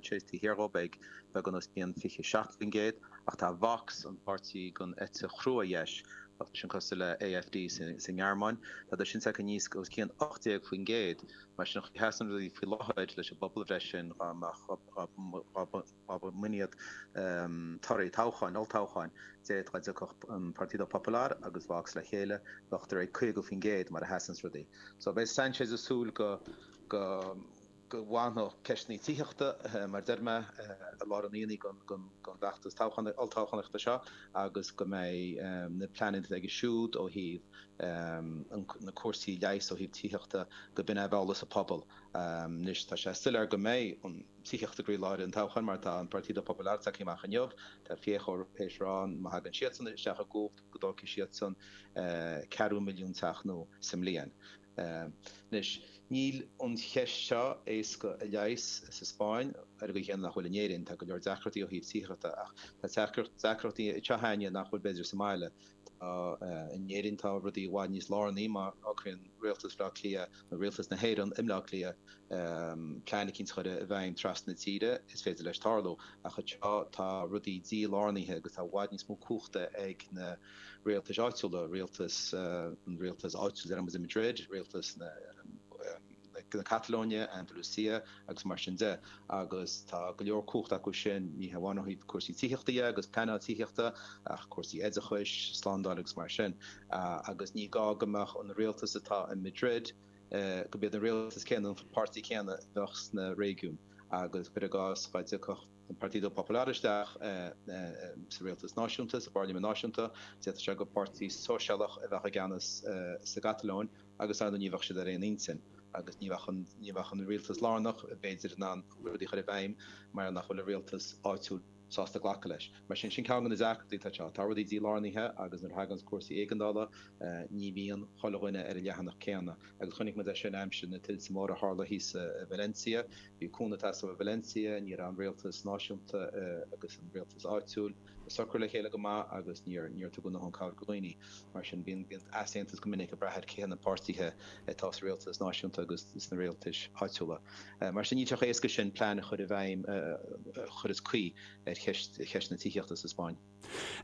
Chase de shíor dhóibh ag beagán os cionn 27%, ach tá Vox, an páirtí den eite chrua dheis, tá seisean cosúil le AfD sa nGearmáin, tá do chinnteacht a níos os cionn 18%. Mar a sheasann rudaí faoi láthair leis an bpobalbhreith sin dhá mbeadh dhá mba iad torthaí toghcháin, olltoghcháin, dé dá dtiocfadh an Partido Popular agus Vox le chéile bheadh thar 50% mar a sheasanns rudaí. So beidh Sanchez ag súil go go. go bhfanfadh ceist na tithíochta, mar a deir mé, i lár an aonaigh don bhfeachtas toghcháin, olltoghchánaíochta seo agus go mbeidh na pleananna atá aige siúd ó thaobh na cúrsaí leighis, ó thaobh tithíochta, go mbeidh an t-eolas ag an bpobal. Anois tá sé soiléir go mbeidh an tithíocht i gcroílár an toghcháin mar tá an Partido Popular ag teacht amach inniu, tá Feijóo théis a rá má thagann siadsan isteach i gcumhacht go dtógfaidh siadsan ceathrú milliún teach nua sa mbliain. Anois, níl an cheist seo éasca a leigheas sa Spáinn, ar an gcaoi chéanna nach bhfuil in Éirinn. Tá go leor deacrachtaí ó thaobh tithíochta ach tá deacrachtaí ag teacht sa Spáinn nach bhfuil b'fhéidir sa mbaile. In Éirinn tá rudaí i bhfad níos lárnaí, má shocraíonn rialtas Bhaile Átha Cliath nó rialtas na hÉireann i mBaile Átha Cliath plean eicínt a chur i bhfeidhm trasna na tíre, is féidir leis tarlú. Ach anseo tá rudaí dílárnaithe agus tá i bhfad níos mó cumhachta ag na. rialtais áitiúla, rialtas an rialtais áitiúil i Madrid, rialtas na Catalóine, Andalucia agus mar sin de agus tá go leor cumhachta acu sin, ní hamháin ó thaobh cúrsaí tithíochta dhe agus pleanáil tithíochta ach cúrsaí oideachais, slándáil agus mar sin agus ní gá go mbeadh an rialtas atá i Madrid, go mbeadh an rialtas céanna nó an páirtí céanna a bheadh sna réigiúin agus cuir i gcás dá dtiocfadh. an Partido Popular isteach sa rialtas náisiúnta, sa bpairlimint náisiúnta, d'fhéadfadh sé gur páirtí sóisialach a bheadh i gceannas sa gCatalóin agus, dar ndóigh, ní bheadh siad ar aon intinn agus ní bheadh an rialtas lárnach, b'fhéidir, in ann rudaí a chur i bhfeidhm mar nach bhfuil an rialtas áitiúil sásta glacadh leis. Mar sin, sin ceann de na deacrachtaí atá anseo. Tá rudaí dílárnaithe agus nuair a thagann cúrsaí éigeandála ní bhíonn chuile dhuine ar an leathanach céanna agus chonaic muid é sin aimsir na tuilte móra a tharla thíos i Valencia, Bhí cúnamh ag teastáil ó Valencia, ní raibh an rialtas náisiúnta agus an rialtas áitiúil ag socrú le chéile go maith agus níor tugadh dóthain cabhair do dhaoine. Mar sin, bíonn easaontas go minic ag brath ar cé na páirtithe atá sa rialtas náisiúnta agus sna rialtais áitiúla. Mar sin, níl sé chomh héasca sin plean a chur i bhfeidhm a chuireas caoi ar cheist na tithíochta sa Spáinn.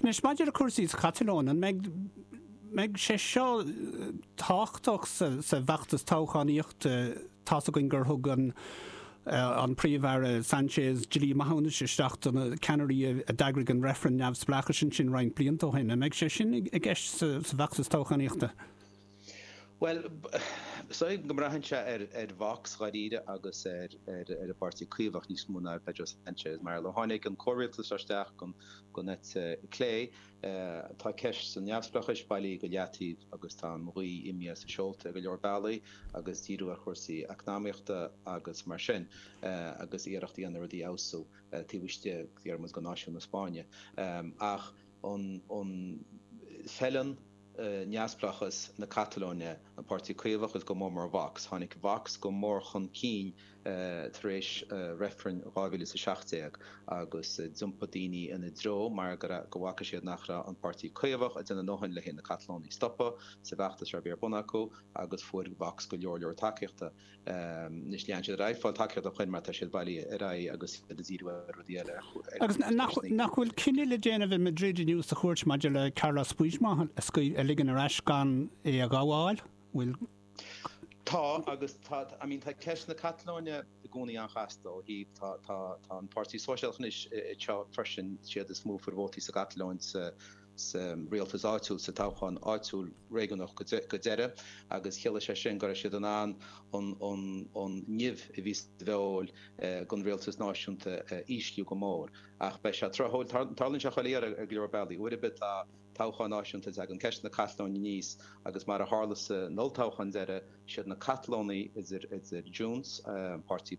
Anois, maidir le cúrsaí sa gCatalóin, an mbeidh sé seo tábhachtach sa bhfeachtas toghchánaíochta? Tá's againn gur thug an Príomh-Aire Sánchez dlí maithiúnais isteach do na ceannairí a d'eagraigh an reifreann neamhspleáchais ansin roinnt blianta ó shin. An mbeidh sé sin i gceist sa bhfeachtas toghchánaíochta? Bhuel, samhlaím go mbraitheann sé ar Vox dáiríre agus ar an bPáirtí Caomhach níos mó ná ar Pedro Sanchez mar ó tháinig an comhrialtas seo isteach den eite chlé tá ceist an neamhspleáchais bailí go leataobh agus tá an ghaoth imithe as a seolta ar go leor bealaí agus díriú ar chúrsaí eacnamaíochta agus mar sin agus iarracht a dhéanamh rudaí a fheabhsú taobh istigh de fhráma náisiún na Spáinne ach an feileann neamhspleáchas na Catalóine, an Páirtí Caomhach agus go mór mór Vox. Tháinig Vox go mór chun cinn tar éis reifrinn 2000 is 17 agus d'iompaigh daoine ina dtreo mar go bhfaca siad nach raibh an Páirtí Caomhach ag déanamh a ndóthain leis na Catalónaigh a stopadh sa bhfeachtas a bhí ar bun acu agus fuair Vox go leor leor tacaíochta. Anois lean siad ar aghaidh ag fáil tacaíocht ó shoin mar tá siad bailí ar aghaidh agus iad ag díriú ar rudaí eile, ar chúrsaí. Agus nach bhfuil cinneadh le déanamh i Madrid inniu sa chúirt maidir le Carlos Puigdemont a ligean ar ais gan é a ghabháil? Bhfuil. Tá agus tá I mean tá ceist na Catalóine i gcónaí an-chasta ó thaobh atá an Páirtí Sóisialach anois freisin siad is mó a fuair vótaí sa gCatalóin sa sa rialtas áitiúil sa toghchán áitiúil réigiúnach deireadh agus chiallaigh sé sin go raibh siad in ann an nimh a bhí sa bhfeoil don rialtas náisiúnta a ísliú go mór. Ach beidh sé tráthúil. Tarlaíonn sé chuile iarraidh ar go leor bealaí. Uair ar bith tá toghcháin náisiúnta ag teacht tagann ceist na Catalóine aníos agus mar a tharla san olltoghchán deireadh, Siad na Catalónaigh, idir Junts, páirtí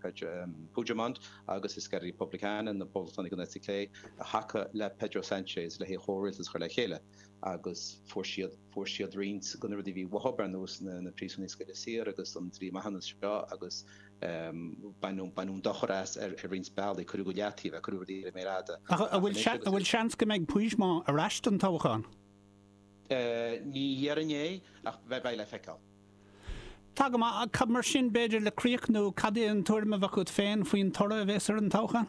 Puigdemont, agus Esquerra Republicana, na poblachtánaigh den eite chlé, a thacaigh le Pedro Sánchez lena chomhrialtas a chur le chéile agus fuair siad fuair siad roinnt de na rudaí a bhí uathu, ar nós na príosúnaigh a scaoileadh saor agus an dlí maithiúnais seo agus baineadh baineadh dochar as ar roinnt bealaí, cuireadh go leataobh é, cuireadh rudaí ar an méar fhada. Ach an bhfuil seans go mbeidh Puigdemont ar ais don toghchán? Ní déarfainn é, ach beidh le feiceáil. Tá go maith, cad mar sin b'fhéidir le críochnú, cad é an tuairim a bheadh agat féin faoin toradh a bheas ar an toghchán?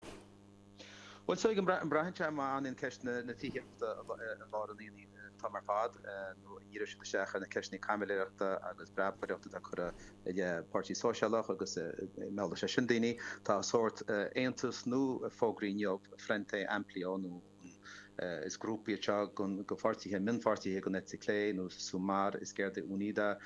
Bhuel, sílim go mbraitheann sé, má fhanann ceist na tithíochta i lár an aonaigh an t-am ar fad nó an ndíreoidh siad isteach ar na ceisteanna caimiléireachta agus breabaireachta atá curtha i leith Páirtí Sóisialach agus meallfaidh sé sin daoine. Tá sórt aontas nua fógraithe inniu, Frente Amplio. Is grúpa é seo de pháirtithe, mionpháirtithe den eite chlé, nua Sumar, Izquierda Unida,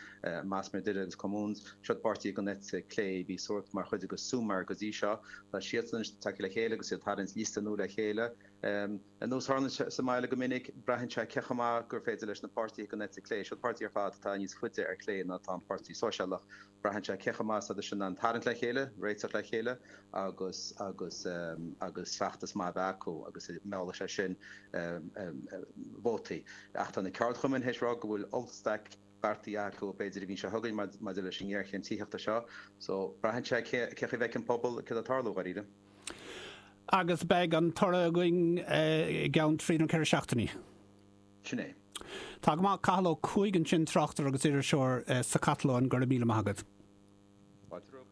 Más Madrid agus Comuns. Seo páirtithe den eite chlé a bhí sórt mar chuid de Sumar go dtí seo. Tá siadsan anois tagtha le chéile agus iad ag tarraingt liosta nua le chéile. Ar nós a tharlaíonn sa mbaile go minic, braitheann sé cé chomh maith agus is féidir leis na páirtithe den eite chlé. Seo páirtithe ar fad atá níos faide ar chlé ná atá an Páirtí Sóisialach. Braitheann sé cé chomh maith is atá sinn in ann tarraingt le chéile, réiteach le chéile agus agus agus feachtas maith a bheith acu agus meallfaidh sé sin vótaí. Ach tá na ceardchumainn théis rá go bhfuil ollstailc beartaithe acu b'fhéidir an mhí seo chugainn maidir leis an ngéarchéim tithíochta seo. So, braitheann sé cén chaoi a bhfeiceann an pobal céard atá ag tarlú, dháiríre. Agus beidh an toradh againn i gceann trí nó ceithre seachtainí. Sin é. Tá go maith. Cathal Ó Cuaig ansin, tráchtaire agus iriseoir sa Chatalóin. Go raibh míle maith agat. Pádraic.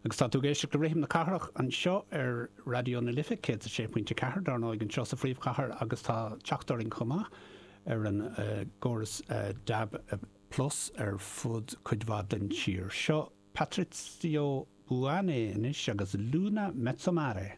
Agus tá tú ag éisteacht le Rithim na Cathrach anseo ar Raidió na Life 106.4, dár ndóigh, anseo sa phríomhchathair agus tá teacht orainn chomh maith ar an gcóras dab plus ar fud cuid mhaith den tír. Seo Patrizio Buanne anois agus Luna Mezzo Mare.